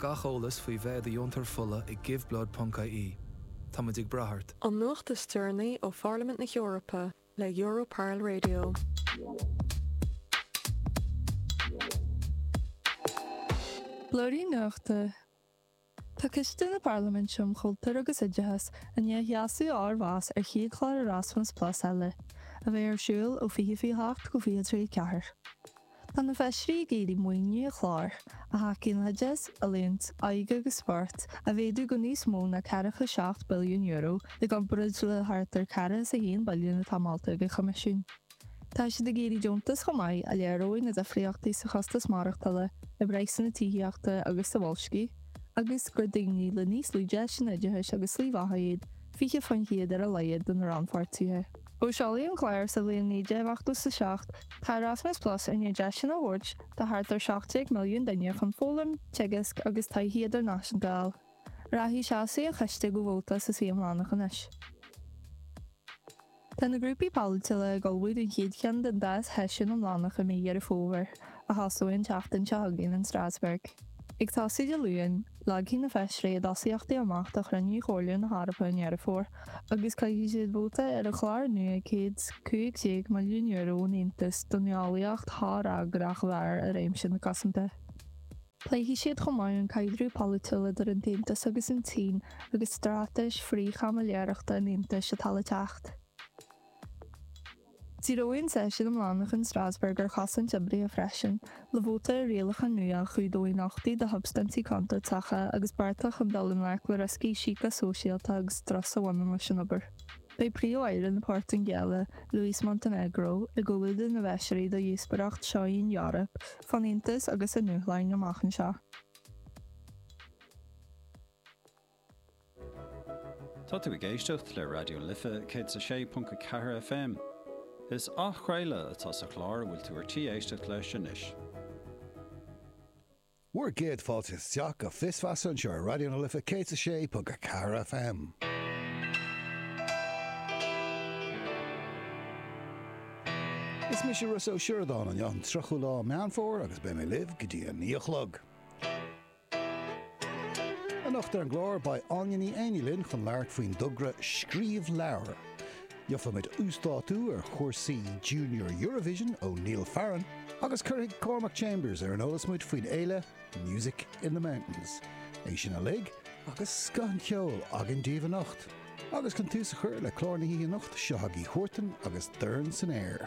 Gach eolas faoi bheith i do dheontóir fola ag giveblood.ie. Táimid ag brath ort. An nuacht is deireanaí ó Pharlaimint na hEorpa le Europarl Radio. Blúirín Nuachta Tá Coiste na Parlaiminte um Chultúr agus Oideachas i ndiaidh a sheasamh a fhormheas ar an chéad chlár Erasmus Plus eile, a bheidh ar siúl ó 2028 go 2034. Tá na Feisirí ag iarraidh maoiniú an chláir a thacaíonn le hoideachas, oiliúint, óige agus spórt a mhéadú go níos mó ná €47 billiún i gcomparáid le thart ar ceathracha is a haon billiún atá molta ag an Choimisiún. Tá siad ag iarraidh deontas chomh maith a léireoidh na difríochtaí sa chostas maireachtála, i bpraghsanna tithíochta agus sa bhoilsciú agus gur daoine le níos lú deiseanna oideachais agus slí bheatha iad 20% ar a laghad de na rannpháirtithe. Ó seoladh an clár sa bhliain 1987, tá Erasmus Plus i ndiaidh deiseanna a thabhairt do thart ar 17 milliún duine chun foghlaim, teagasc agus taithí idirnáisiúnta a fháil. Rachaidh seasamh an choiste go vóta sa suí iomlánach anois. Tá na grúpaí polaitiúla ag ullmhú don chéad cheann den dá sheisiún iomlánach i mí Dheireadh Fómhair. a thosóidh an tseachtain seo chugainn in Strasbourg. Ag tosú Dé Luain, leagfaidh na feisirí a dtosaíochtaí amach do chruinniú Chomhairle na hEorpa i nDeireadh Fómhair agus caithfidh siad vóta ar an chlár nua €115 milliún ón Aontas don nuálaíocht shofhreagrach mhear i réimse na cosanta. Pléifidh siad chomh maith an caidreamh polaitiúil idir an tAontas agus an tSín agus straitéis frith-chaimiléireachta an Aontais atá le teacht. Díreoidh an seisiún iomlánach in Strasbourg ar chosaint oibrithe freisin, le vóta ar rialacha nua a chumhdóidh nochtaí do shubstaintí contúirteacha agus bearta chun dul i ngleic le rioscaí síceasóisialta agus strus a bhaineann leis an obair. Beidh Príomh-Aire na Portaingéile, Luís Montenegro, i gcomhluadar na bhfeisirí do dhíospóireacht Seo í an Eoraip fán Aontas agus a ndúshláin amach anseo. Tá tú ag éisteacht le Raidió na Life 106.4 FM. Is athchraoladh atá sa chlár a bhfuil tú ar tí éisteacht leis anois. Bhur gcéad fáilte isteach go Fios Feasa anseo ar Raidió na Life 106.4 FM. Is mise Rossa Ó Sioradáin, anocht an 30ú lá Meán Fómhair agus beidh mé libh go dtí a 9 a chlog. Anocht ar an gclár, beidh Áine Ní Éiní linn chun labhairt faoin dtogra 'Scríobh Leabhar'. Gheobhaidh muid uasdátú ar chúrsaí Junior Eurovision ó Neil Farren agus cuirfidh Cormac Chambers ar an eolas muid faoin fhéile Music in the Mountains. É sin uilig agus scoth an cheoil againn daoibh anocht. Agus chun tús a chur le clár na hoíche anocht, seo chugaibh Huartan agus Dorn san Aer.